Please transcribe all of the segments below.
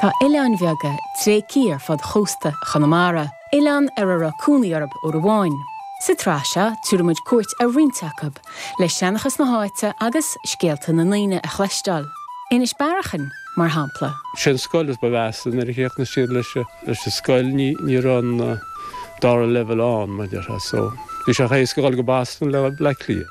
Tá oileáin bheaga tréigthe ar fud chósta Chonamara, oileáin ar a raibh cónaí orthu uair amháin. Sa tsraith seo, tabharfaimid cuairt ar roinnt acu, le seanchas na háite agus scéalta na ndaoine a chloisteáil. Inis Bearachain, mar shampla. Sé an scoil is ba mheasa nuair a chríochnaigh siad leis an scoil ní raibh an dara leibhéal ann mar déarfá so bhí sé chomh héasca dhul go Boston le Baile Átha Cliath.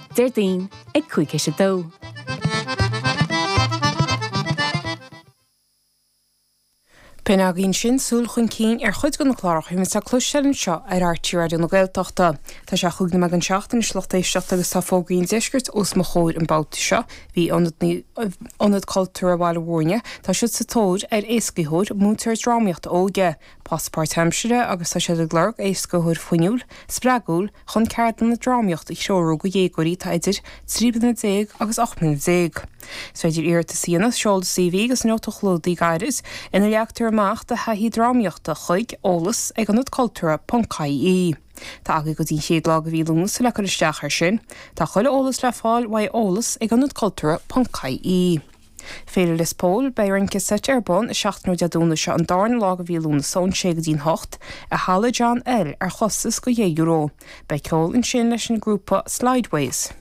Déardaoin ag cúig théis a dó. B'in agaibh ansin súil chun cinn ar chuid de na cláracha a bhíonn le cloisteáil anseo ar RTÉ Raidió na Gaeltachta. Tá sé chúig nóiméad don seacht anois a lucht éisteachta agus tá fógraí an deiscirt os mo chomhair an babhta seo. Bhí Ionad Cultúrtha Bhaile Mhúirne, tá siad sa tóir ar éascaitheoir, múinteoir drámaíochta óige, Post páirtaimsire agus tá siad ag lorg éascaitheoir fuinniúil, spreagúil chun ceardlanna drámaíochta a threorú do dhéagóirí atá idir trí bliana déag agus ocht mbliana déag. Is féidir iarratas a dhéanamh, seol do CV agus nóta chlúdaigh gairid ina leagtar amach do thaithí drámaíochta chuig, eolas ag ionad cultúrtha ponc ie Tá agaidh go dtí an chéad lá de mhí Lúnasa le cur isteach air sin. Tá chuile eolas le fáil uaidh eolas ag ionad cultúrtha ponc ie. Féile Lios Póil, Beidh rince seite ar bun i seachtaine Dé Domhnaigh seo an darna lá de mhí Lúnasa ón 6 go dtí an 8 i Halla John L ar chostas de dheich euro. Beidh ceol ansin leis an ngrúpa Slideways.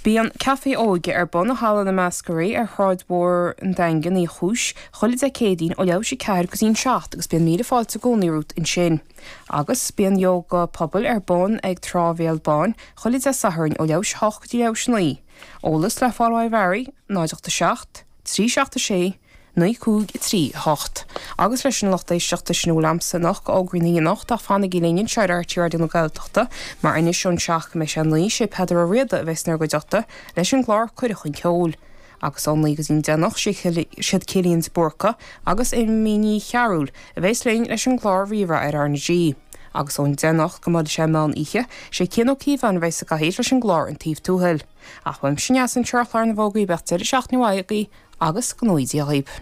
Bíonn an Café Óige ar bun i Halla na mBleascairí ar Shráid Mhór an Daingin Uí Chúis chuile Dé Céadaoin ó leath théis a ceathair go dtí an seacht agus bíonn míle fáilte i gcónaí romhat ansin. Agus bíonn Yóga Pobail ar bun ag Trá Bhéal Báin chuile Dé Sathairn ó leath théis a hocht go dtí leath théis a naoi. Eolas le fáil uaidh Mary, 0 8 7 3 7 6 9 5 3 8, agus leis sin a lucht éisteachta sin a bhfuil agamsa anocht de fhógraí na hoíche anocht ach fanaigí linn anseo ar RTÉ Raidió na Gaeltachta mar anois ón seacht go mbeidh sé a naoi is é Peadar Ó Riada a bheas inár gcuideachta leis an gclár Cuireadh Chun Ceoil agus ón naoi go dtí an deich anocht siad Cillian de Búrca agus Emma Ní Chearúil a bheas linn leis an gclár Rí-Rá ar RnaG. agus ón deich anocht go mbeidh sé ina mheán oíche, sé Cian Ó Cíobháin a bheidh sa gcathaoir leis an gclár An Taobh Tuathail. Ach uaimse anois an treoirchlár na bhfógraí bíodh deireadh seachtaine mhaith agaibh agus go ngnóthaí Dia dhaoibh.